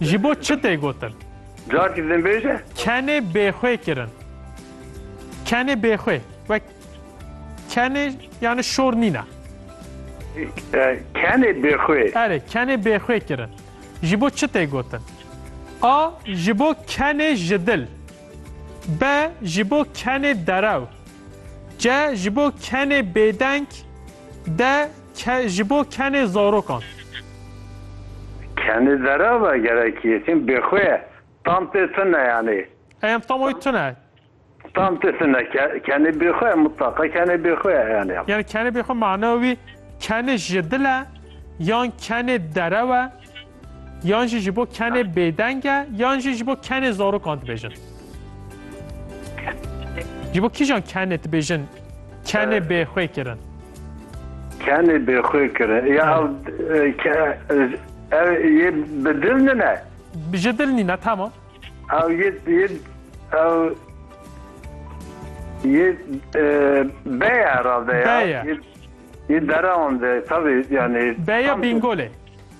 Ji bo çi tê gotin? Carekî din bêje. Kenê bêxwê kirin. Kenê bêxwê. Wek kenê yani şor nîne. E, Kenê bêxwê. Erê, kenê bêxwê kirin. Ji bo çi tê gotin? A. Ji bo kenê ji dil. B. Ji bo kenê derew. C. Ji bo kenê bêdeng. D. Ke ji bo kenê zarokan. Kenê dera ve gerekî ye çim bêxwe ye. Tam tê tune yanî. Ey em tam oy tune. Tam tê tune ke kenê bêxwe ye mutlaqa kenê bêxwe ye yanî. Yanî kenê bêxwe mana wî kenê ji dil e yan kenê derew e? Yan jî ji bo kenê bêdeng e yan jî ji bo kenê zarokan dibêjin? Ji bo kîjan kenê dibêjin kenê bêxwê kirin? Kenê bêxwê kirin ya ev yê bi dil nine? Ji dil nîne tamam. Ew yê yê ew yê beye herhalde ya. Beye. Yê derewan de tabii yani. Beye bingolê.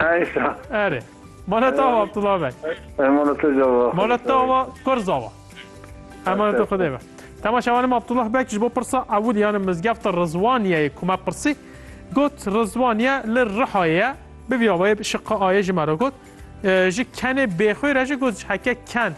Eysa. Erê. Manet ava Abdullah Bey. Emanet ava. Manet ava Kurz ava. Emanet Xudê be. Tema şevanim Abdullah Bey ji bo pirsa ewil yani mizgefta Rizwaniyeyê ku me pirsî got Rizwaniye li Rihayê ye bi vî avayê şiqa ayê ji me re got ji kenê bêxwê re jî got ji heke ken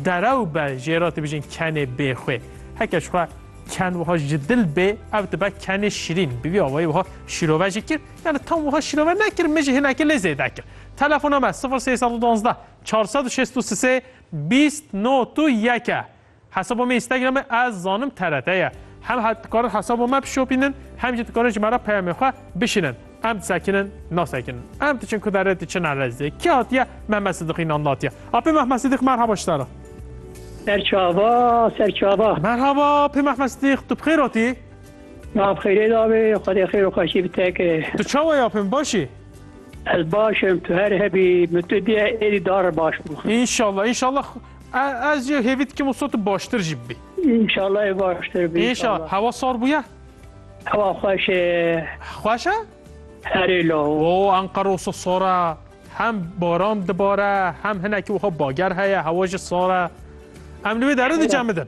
derew be jê re dibijin kenê bêxwê heke ji xwe ken wiha ji dil bê ev dibe kenê şirîn bi vî avayê wiha şîrove jî kir Yani tam wiha şîrove nekir, min jî hinekî lê zêde kir. Telefona me sifir sê sed û duwazdeh çar sed û şêst û sisê bîst not û yek e. Hesaba me Instagramê ez zanim TRT ye. Hem he dikarin hesaba me bişopînin hem jî dikarin ji me re peyamê xwe bişînin. Em disekinin nasekinin. Em diçin ku derê diçin Eleziyê. Kî hatiye? Mehmet Sidîq Înan hatiye. Apê Mehmet Sidîq merhaba ji te re. Serçava, serçava. Merhaba, pê Mehmet Sidîq, tu bi xêr hatî? Ma bi xêrê dabê, Xwedê xêr û xweşî bi te ke. Tu çawa ye apê min baş î? Ez baş im, tu her hebî, min tu diye êdî dar re baş bû. Înşallah înşallah ez jî hêvî dikim wisa tu baştir jî bibî. Înşallah ê baştir bî. Înşallah. Hewa sar bûye? Hewa xweş e. Xweş e? Herê law. O Enqera wisa sar e. Hem baran dibare hem hinekî wiha bager heye hewa jî sar e. Em li wê derê dicemidin.